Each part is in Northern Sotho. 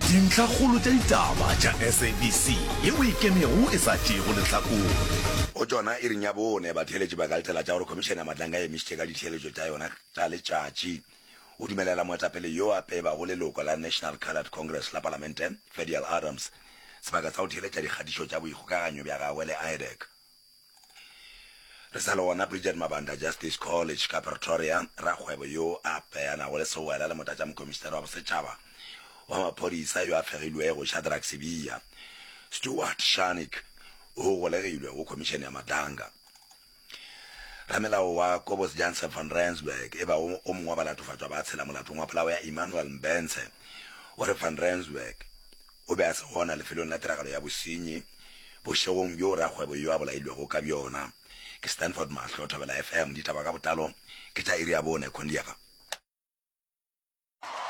Dintlhakgolo tša ditaba tša SABC ye o e kemego e sa tšeego lehlakore. Go tšona iring ya bone, batheeletši ba ka letela tša gore Khomišene ya Matlanga e emišitše ka ditheeletšo tša yona tša letšatši go dumelela moetapele yo a pebago leloko la National Coloured Congress la Palamente, Fedial Adams, sebaka sa go theeletša dikgatišo tša boikgokaganyo bja gagwe le IDEC. Re sa le gona, Bridget Mabanda, Justice College ka Pretoria, rakgwebo yo a apeanago le sewela le Motlatšamokomišinare wa Bosetšhaba wa Maphodisa yo a fegilwego Shadrack Sibiya, Stuart Shannick, o golegilwe go Khomišene ya Madanga. Ramelao wa Kobus Jansen van Rensburg, e bago o mongwe wa balatofatšwa ba tshela molatong wa polao ya Emmanuel Mbentse, o re Van Rensburg, O be a se gona lefelong la tiragalo ya bosenyi bošegong bjo rakgwebo yo a bolailwego ka bjona ke Stanford Mahlo, Thobela FM. Ditaba ka botlalo ke tša iri ya bone. Kondiafa.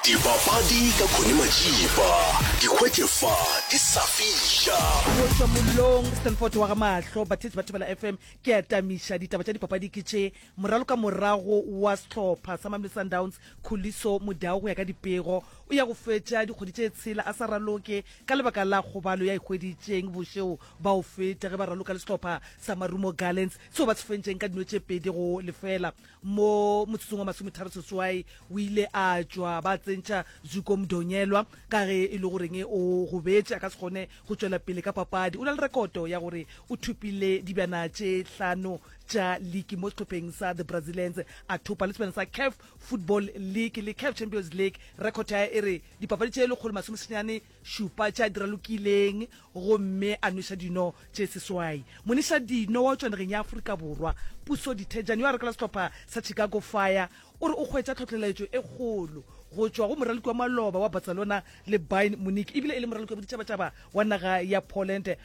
Dipapadi ka Connie Majiba, di hwetše fa di sa fiša. Go tšwa mollong, Stanford wa ga Mahlo, batheetsi ba Thobela FM, ke a tamiša. Ditaba tša dipapadi ke tše, moraloka morago wa sehlopha sa Mamelodi Sundowns Khuliso Modau go ya ka dipego o ya go fetša dikgwedi tše tshela a sa raloke ka lebaka la kgobalo ya e hweditšeng bošego ba o feta ge ba raloka le sehlopha sa Marumo Gallants seo ba se fentšeng ka dino tše pedi go lefela mo motsotsong wa masometharo seswai o ile a tšwa ba tsentšha Zuko Mdonyelwa ka ge e le goreng o gobetše a ka se kgone go tšwela pele ka papadi o na le rekoto ya gore o thopile dibjana tše hlano tša league mo sehlopheng sa the brazilians a thopa le sebjana sa caf football league le caf champions league record ya e re dipapadi tše lekgolo masomesenyane šupa tša dira lokileng gomme a nweša dino tše seswai moniša dino wa tšwanegeng ya aforika borwa puso dithejane yo a rekela sehlopha sa chicago fire o re o kgwetša tlhotlheletšo e kgolo go tšwa go moraloki wa maloba wa barcelona le byn munich ebile e le moraloki wa boditšhabatšhaba wa naga ya poland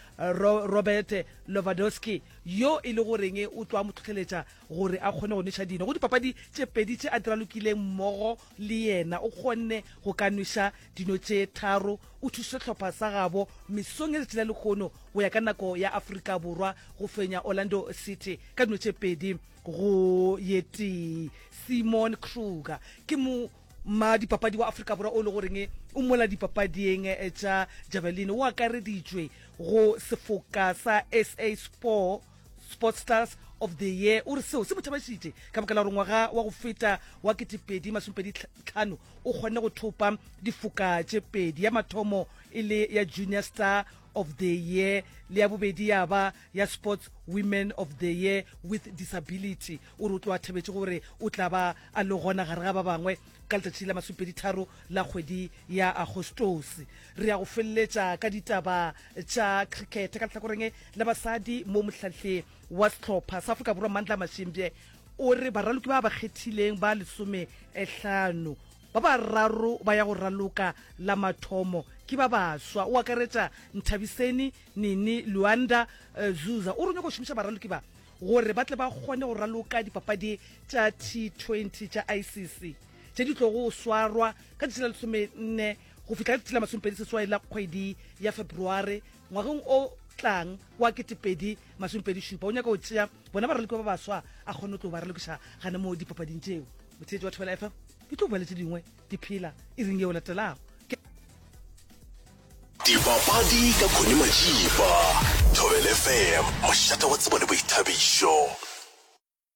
robert lovadowski yo e le goreng o tlo a mo tlhotlheletša gore a kgone go nweša dino go dipapadi tše pedi tše a di ralokileng mmogo le yena o kgonne go ka nweša dino tše tharo o thušitše sehlopha sa gabo mesong ya letši la lekgono go ya ka nako ya aforika borwa go fenya orlando city ka dino tše pedi go ye tee simon kruger ke mo Mma dipapadi wa Afrika Borwa o le goreng o mola dipapading eh, tša javelin o akareditšwe go sefoka sa sa sport sports stars of the year o re seo se mo thabešitše ka baka la gore ngwaga wa go feta wa ketepedi masomepedi tlhano o kgonne go thopa difoka tše pedi ya mathomo e le ya junior star of the year le ya bobedi ya ba ya Sports Women of the Year with Disability o re o tlo a thebetše gore o tla ba a le gona gare ga ba bangwe ka letšatši la masupeditharo la kgwedi ya agostose re ya go feleletša ka ditaba tša cricket ka letlhakoreng la basadi mo mohlahle wa setlhopha sa afrika borwa mandla mashimbye o re baraloki ba ba kgethileng ba lesome ehlano ba ba raro ba ya go raloka la mathomo ke ba baswa o akaretša nthabiseni Nini Luanda Zuza o re o nyaka go šomiša baraloki ba gore ba tle ba kgone go raloka dipapadi tša T20 tša ICC tše di tlogo go swarwa ka tšatši la lesomenne go fihla ka tšatši la masomepedi seswai la kgwedi ya February ngwageng o tlang wa ketepedi masomepedi šupa o nyaka go tšea bona baraloki ba baswa a kgone go tlo ba ralokiša gane mo dipapading tšeo motheetši wa thobela fm ke tlo boeletše dingwe Ke phela iring yeo latelago. Dipapadi ka Connie Majiba, Thobel FM, mošate wa tsebo le boithabišo.